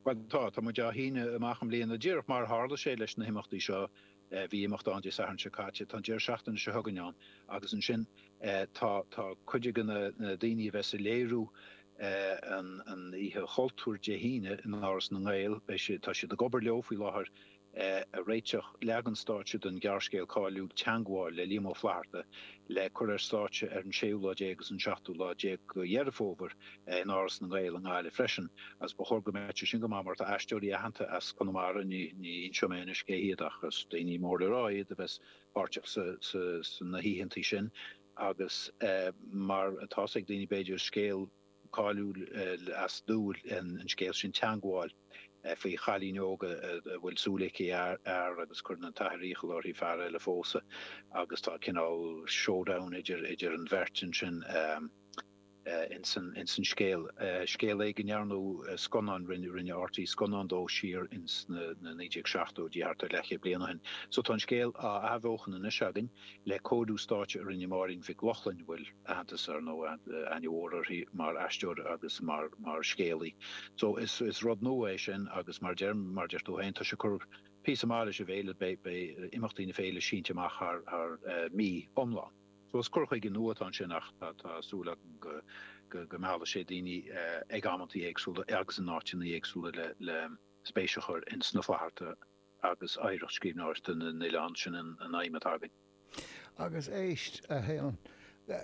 Bhuel, tá. Tá muid á shíneadh amach i mbliana. Díreach mar a tharla sé leis na himeachtaí seo, bhí imeacht ann Dé Sathairn seo caite, tá an deireadh seachtaine seo chugainn ann agus ansin tá cuid de na daoine a bheidh sa léiriú an Oíche Chultúir Dé hAoine in Áras na nGael, beidh siad, tá siad ag obair leo faoi láthair. a réiteach, leagan stáitse den ghearrscéal cáiliúil Teangmháil le Liam Ó Flaithearta le cur ar stáitse ar an séú lá déag agus an seachtú lá déag de Dheireadh Fómhair in Áras na nGael i nGaillimh freisin, agus ba chóir go mbeadh sé sin go maith mar tá aisteoirí aitheanta as Conamara, ní inseoidh mé anois cé hiad ach is daoine mór le rá iad, a bheas páirteach sna hoícheanta sin agus mar atá's ag daoine b'fhéidir, scéal. cáiliúil as Dúil an scéal sin teangmháil faoi chailín óg a bhfuil súil aici ar fhear agus cuireann an t-athair iachall uirthi fear eile a phósadh agus tá cineál showdown idir an bheirt acu sin ins an scéal. Scéal é go ndearnadh scannán rinne RTÉ scannán dó siar ins na 1970idí thart ar leathchéad bliain ó shin so tá an scéal á athbheochan anois againn. le cóiriú stáitse a rinne Máirín Mhic Lochlainn, a bhfuil aitheantas ar ndóigh aithne mhór uirthi mar aisteoir agus mar scéalaí. So is rud nua é sin agus mar deir mar deir tú féin, tá sé ag cur píosa maith leis an bhféile, beidh imeachtaí na féile sínte amach thar mí iomlán. So is cur chuige nua atá ansin ach tá súil agam go go meallfaidh sé daoine ag amantaí éagsúla agus in áiteanna éagsúla le spéis a chur in sna Flathartaigh. Agus oidhreacht scríbhneoireachta na n-oileán sin an aidhm atá againn. Agus éist, a Sheáin,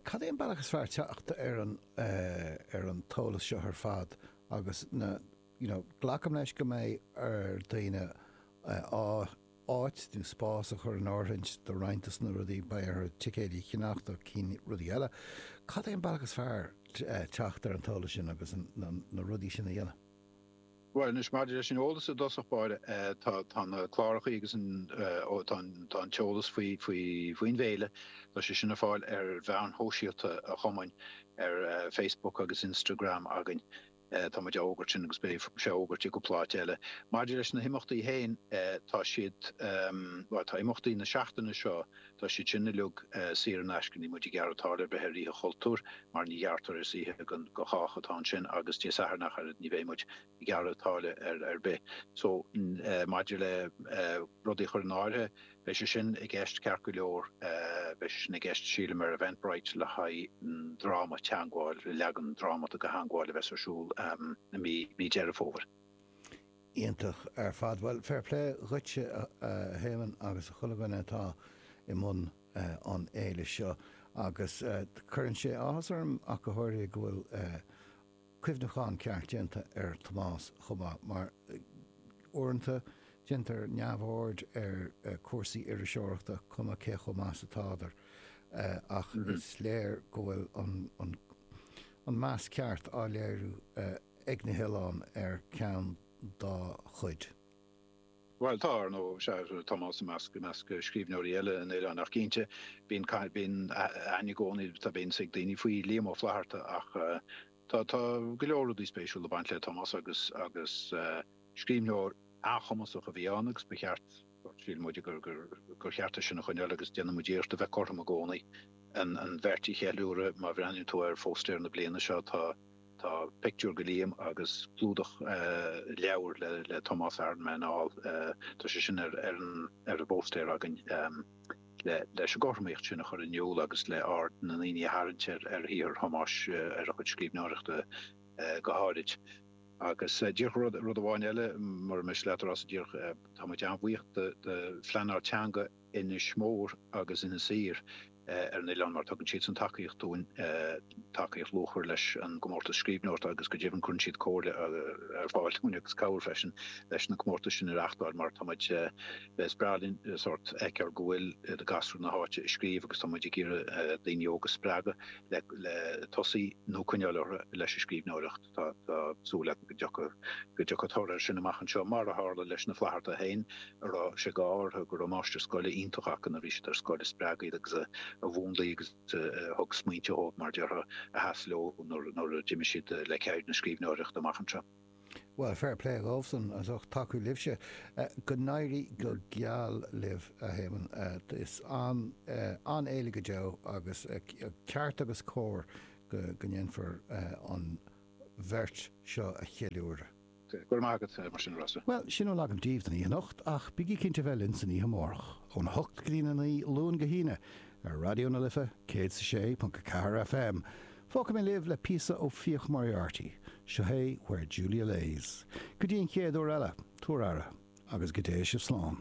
cad é an bealach is fearr teacht ar an t-eolas seo ar fad agus na, you know, glacaim leis go mbeidh ar dhaoine áit nó spás a chur in áirithint do roinnt des na rudaí, beidh orthu ticéidí a cheannacht do cinn rudaí eile. Cad é an bealach is fearr teacht ar an t-eolas sin agus na rudaí sin a dhéanamh? Bhuel, anois, maidir leis an eolas i dtosach báire, tá na cláracha agus an, ó, tá an, tá an t-eolas faoi, faoi, faoin bhféile, tá sé sin ar fáil ar mheáin shóisialta an chumainn, ar Facebook agus Instagram againn. Tá muid á fhógairt sin agus beidh sé á fhógairt i gcúpla áit eile. Maidir leis na himeachtaí féin, tá siad, bhuel, tá imeachtaí na seachtaine seo Tá siad sin uilig saor in aisce, níl muid ag gearradh táille ar bith ar Oíche Chultúir mar ní ghearrtar is oíche do chách atá ansin agus Dé Sathairn ach oiread, ní bheidh muid ag gearradh táille ar bith. So, maidir le rudaí a chur in áirithe, beidh sé sin i gceist ceart go leor, beidh sé sin i gceist sílim ar Eventbrite le haghaidh an dráma, Teangmháil, leagan drámata de Theangmháil a bheas ar siúl i mí Deireadh Fómhair. Iontach ar fad. Bhuel, fair play dhuitse a hÉamonn agus a chuile dhuine atá i mbun an fhéile seo. Agus cuireann sé áthas orm ach go háirithe go bhfuil cuimhneachán ceart déanta ar Thomás chomh maith mar uaireanta déantar neamhaird ar chúrsaí iriseoireachta cuma cé chomh maith is atádar ach is léir go bhfuil an meas ceart á léiriú ag na hoileáin ar cheann dá chuid. Bhuel, tá, ar ndóigh. Sea, Tomás, i measc scríbhneoirí eile an oileáin. Ach cinnte, bíonn, bíonn aithne i gcónaí, tá, bíonn a fhios ag daoine faoi Liam Ó Flaithearta. Ach tá, tá go leor rudaí spéisiúla ag baint le Tomás agus, agus scríbhneoir an-chumasach a bhí ann agus ba cheart, Shíl muid gur cheart é sin a choinneáil agus déanann muid iarracht a bheith cothrom i gcónaí, an bheirt a cheiliúradh. Má bhreathnaíonn tú ar phóstaer na bliana seo, tá pictiúr de Liam agus clúdach leabhair le Tomás, Aranmen All. Tá sé sin ar an bpóstaer againn leis an gcothromaíocht sin a chur in iúl agus le aird na ndaoine a tharraingt ar shaothar Thomáis, ar a chuid scríbhneoireachta go háirid. Agus díreach rud, rud amháin eile, mura miste leat, a Rossa, díreach, táimid an-bhuíoch do Phleanáil Teanga Inis Mór agus Inis Oírr ar an oileán mar tugann siadsan tacaíocht dúinn, tacaíocht luachmhar leis an gcomórtas scríbhneoireachta agus go deimhin cuireann siad comhairle ar fáil dúinn agus cabhair freisin leis na comórtais sin a reachtáil mar táimid, is breá linn sórt fheiceáil go bhfuil gasúir na háite ag scríobh agus táimid ag iarraidh daoine óga spreagadh le tosaí nó coinneáil orthu leis an scríbhneoireacht. Tá, tá súil agam go dtiocfaidh, go dtiocfaidh toradh air sin amach anseo, mar a tharla leis na Flaitheartaigh féin a raibh sé d'ádh orthu go raibh máistir scoile iontach acu nuair a bhí siad ar scoil a spreag iad agus a mhúnlaigh agus a thug smaointe dhóibh, mar a déarfá, a sheas leo nuair a d'imigh siad le ceird na scríbhneoireachta amach anseo. Bhuel, fair play dhóibhsan, as ucht tacú libhse. Go n-éirí go geal libh, a hÉamonn. Is an-fhéile go deo agus ceart agus cóir. go ndéanfar an bheirt seo a cheiliúradh. Go raibh maith agat, mar sin, a Rossa. Bhuel, sin a bhfuil agam daoibh don oíche anocht, ach bígí cinnte a bheith linn san oíche amárach, óna hocht go dtí'n a naoi, Luan go hAoine, ar Raidió na Life, céad 's a sé ponc a ceathair FM. Fágfaidh mé libh le píosa ó Fiach Moriarty. Seo é Where Julia Lays. Go dtí an chéad uair eile, tabhair aire, agus go dté sibh slán.